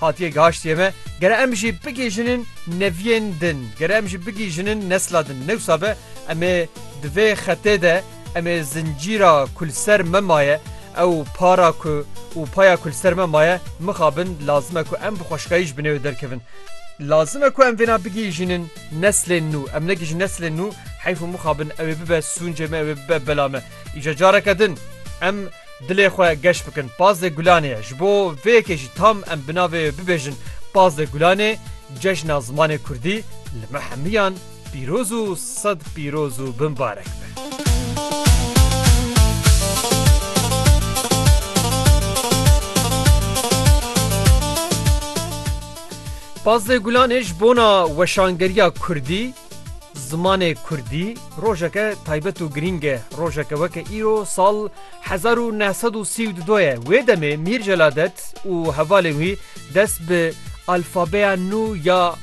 Hatiye gaştiye me gere em jî bigihîjinin neviyên din, gere em jî bigihîjinin nesla din. Newsa be em ê di vê xetê de em ê zincîra ku li ser me maye ew para ku û paya ku li ser me maye mixabin. Lazim e ku em bi xweşkayî ji binê wê derkevin. Lazim e ku em vêna bigihîjinin neslên nû. Em negihîjin neslên nû heyf û mixabin ew ê bibe sûncê me, ew ê bibe bela me. Îja careke din em. Dilê xwe geş bikin Pazdeh Gulanê ye. Ji bo vê yekê jî tam em bi navê wê bibêjin Pazdeh Gulanê, Cejna Zimanê Kurdî li me hemiyan pîroz û sed pîroz û bimbarek be. Pazdeh Gulanê ji bona weşangeriya Kurdî, Zimanê kurdî rojeke taybet û girîng e. Rojeke weke îro sal hezar û neh sed û sî û du ye. Wê demê Mîr Celadet û hevalên wî dest bi alfabeya nû ya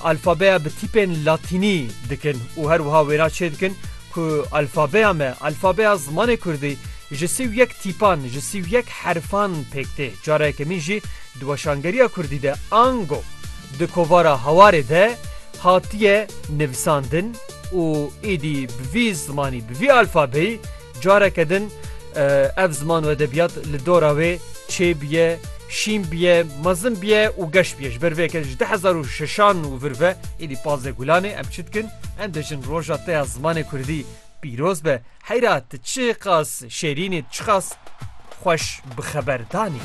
alfabeya bi tîpên latînî dikin û her wiha wêna çêdikin ku alfabeya me, alfabeya zimanê kurdî ji sî û yek tîpan, ji sî û yek herfan pêk tê. Cara yekemîn jî di weşangeriya kurdî de ango. Di kovara Hawarê de hatiye nivisandin û êdî bi vî zimanî, bi vî alfabeyî careke din ev ziman û edebiyat li dora wê çê biye, şîn biye, mezin biye û geş biye. Ji ber vê yeke ji du hezar û şeşan û vir ve êdî pazdeh gulan ê. Em çi dikin? Em dibêjin roja te ya zimanê kurdî pîroz be. Heyra tu çiqas şêrîn î, tu çiqas xweş bi xeberdan î.